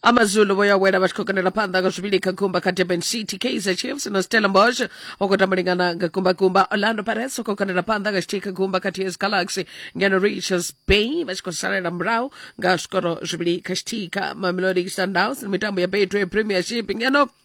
amazulu vho ya wela vha tshi khou kandela phanḓa nga zwivhili kha gumba kha durban city kaizer chiefs na stella mbosh o khou tamba lingana nga gumbagumba orlando pirates o khou kandela phanḓa nga tshithihi kha gumba kha ts galaxy ngeno richards bay vha tshi khou salela murahu nga zwikoro zwivhili kha tshithihi kha mamelodi sundowns mitambo ya betway premiership ngeno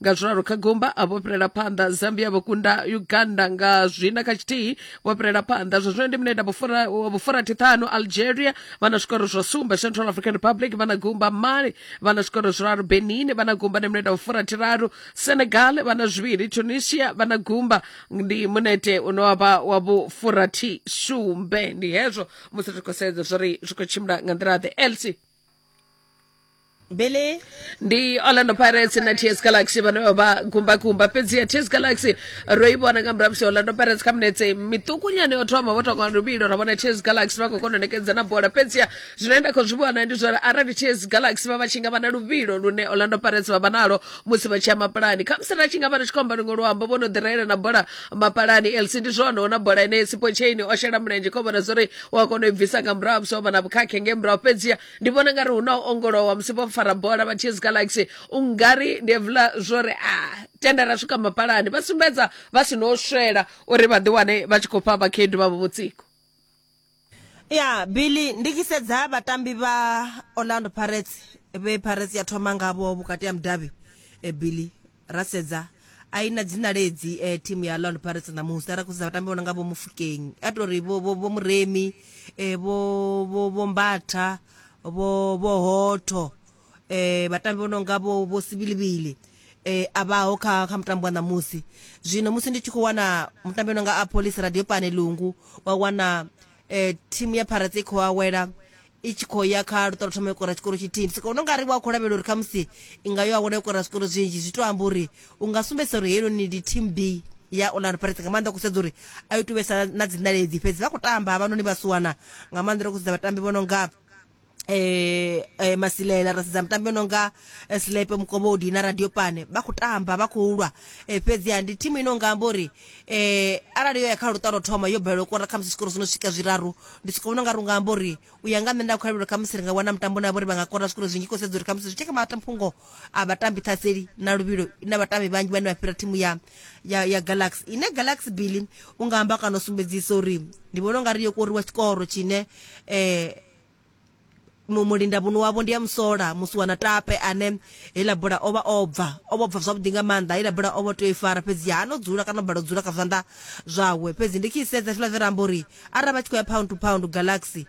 nga zwiralo kha gomba a vho fhirela phanḓa zambia vho kunda uganda nga zwina kha tshithihi vho fhirela phanḓa zwa zwino ndi mineda vhufurathi ṱhanu algeria vha na zwikoro zwa sumbe central african republic vha na gumba mali vha na zwikoro zwiraru benin vha na gumba ndi mineda vhufurathi raru senegal vha na zwivhili tunisia vha na gumba ndi munete une wavha wa vhufurathi sumbe ndi hezwo musi ri khou sedza zwo ri zwi khou tshimbila nga nḓila ḓe elsi billy ndi orlando pirates na ts galaxy vhane vha vha gumbakumba fhedzi ya ts galaxy ro i vhona nga murahu musi orlando pirates kha minetse miṱukunyana yo thoma vho tonga luvhilo ra vhona ts galaxy vha khou kona u nekedza na bola fhedzi ya zwine nda khou zwi vhona ndi zwori arali ts galaxy vha vha tshi nga vha na luvhilo lune orlando pirates vha vha nalo musi vha tshi ya mapulani khamusi ra tshi nga vha ri tshi khou amba luṅwe luambo vho no ḓirayela na bola mapalani elsi ndi zwone ona bola ine sipo chain o shela mulenzhe kho vhona zwori u a kona u i bvisa nga murahu musi o vha na vhukhakhe nge murahu fhedziha ndi vhona ngari hu na u ongolowa musi vho fara bola vha ts galaxy u ngari ndi evula zwori a tenda ra swika mapalani vha sumbedza vha si no swela uri vha ḓi wane vha tshi khou fha vhakhaedu vhavho vhutsiko ya billy ndi tshi sedza vhatambi vha orlando pirates vhe pirates ya thoma ngavho vhukati ha mudavhi e billy ra sedza a i na dzina ledzi e, thimu ya orlando pirates ṋamusi ara khou sedza vhatambi vhona nga vho mufukeng a to ri vho vho- vho muremi e, vho vho- vho mbatha vho vho hotho eh vhatambi vho no nga vho vho sibilibili eh a vhaho kha kha mutambo wa ṋamusi zwino musi ndi tshi khou wana mutambi no nga a police radio pane lungu wa wana eh thimu ya pirates i khou awela i tshi khou ya kha luṱolo thoma ikora tshikoro tshithihi ndi sokono nga ri wa khou lavhelela uri khamusi i nga yo awela ikora zwikoro zwinzhi zwi to amba uri u nga sumbedzisa uri heinoni ndi team b ya orlando pirates nga maanḓa kusedza uri a yo tuvhesa na dziṋaledzi fhedzi vha khou tamba havhanoni vhasiwana nga maanḓa ro kusedza vhatambi vho no nga eh, eh, masilela ra sedza mitambo yo nonga eh, slepe mukobodi na radio pane vha khou tamba vha khou lwa eh, fhedziha ndi thimu ino nga amba uri eh, arali yo ya kha luṱa lwo thoma yo balelwa u kora khamusi zwikoro zwi no swika zwiraru ndi soko vhona nga ri nga amba uri u ya nga nṋe nda khou lavhelela khamusi ri nga wana mutambo na vhori vha nga kora zwikoro zwinzhi khou sedza uri khamusi zwi tsheke matamfhungo a vhatambi ṱhaseli na luvhilo na vhatambi vhanzhi vhane vha fhira thimu ya ya, ya galaxy ine galaxy billy u nga amba kana u sumbedzisa uri ndi vhona u nga ri yo koriwa tshikoro tshine eh, mu- mulinda vhuno wavho ndi ya musola musi wana tape ane heiḽa bola o vha o bva o vha o bva zwavhuḓi nga maanḓa heiḽa bola o vha o tea u i fara fhedzi ha no dzula kana o bala u dzula kha zwanḓa zwawe fhedzi ndi tshi i sedza hezwiḽa zwe ra amba uri arali vha tshi khou ya pound to pound galaxy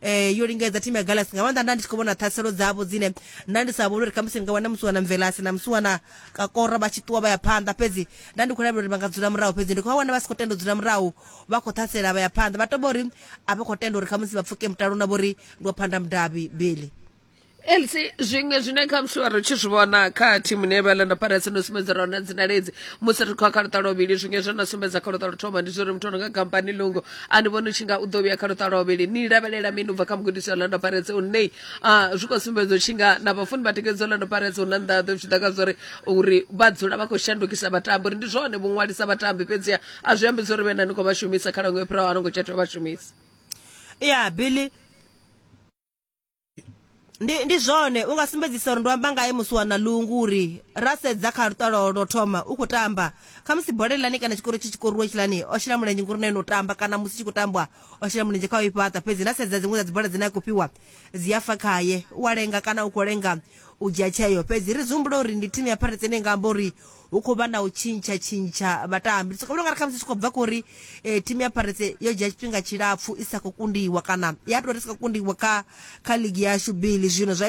eh yo lingedza timu ya galasi nga maanḓa nda ndi tshi khou vhona ṱhaselo dzavho dzine nda ndi sa vhoni uri khamusi ni nga wana musiwana mvelasi na musiwana kakora vha tshi ṱuwa vha ya phanḓa fhedzi nda ndi khou lavhelela uri vha nga dzula murahu fhedzi ndi khou vha wana vha si khou tenda u dzula murahu vha khou ṱhasela vha ya phanḓa vha toba uri a vha khou tenda uri khamusi vha pfuke mutalo na vhori ndi wa phanḓa mudavhi beli elsi zwiṅwe zwine kha mushuwa ri tshi zwi vhona kha thimu ne vha landa parasi no sumbedza rona dzinalezi musi ri khou kha luṱa lwavhili zwiṅwe zwo na sumbedza kha luṱa luthoma ndi zwori muthu ono nga kampani lungo a ni vhoni tshi nga u ḓo vhuya kha luṱa lwavhili ni lavhelela mini ubva kha mugudisi wa landa parasi u nei a zwi khou sumbedza u tshi nga na vhafuni vha tikedzo landa parasi hu na nḓaḓo zwi ḓa kha zwori uri vha dzula vha khou shandukisa vhatambi uri ndi zwone vho ṅwalisa vhatambi fhedziha a zwi ambi zwori vhe na ni khou vha shumisa kha lango yo phiraho a no ngo tsha tea vha shumisa ya yeah, billy ndi ndi zwone u nga sumbedzisa uri ndo amba ngae musi wa na lungu uri ra sedza kha lutalo lwo thoma u khou tamba khamusi bola iḽani kana tshikoro tshi tshikoruwa tshilani o shela mulenzhe ngori na ene u tamba kana musi tshi khou tambwa o shela mulenzhe kha u i fhaṱa fhedzi na sedza dziṅwe dza dzibola dzine a khou fhiwa dzi a fa khaye u a lenga kana u khou lenga u dzhia tsheo. Fhedzi ri zwi humbula uri ndi thimu ya Pirates ine nga amba uri hu khou vha na u tshintsha-tshintsha vhatambi. Ndi sokou vhona u nga ri khamusi zwi tshi khou bva kha uri thimu ya Pirates yo dzhia tshifhinga tshilapfu i sa khou kundiwa kana ya tou ri sa khou kundiwa kha kha ligi yashu Billy zwino zwa ita.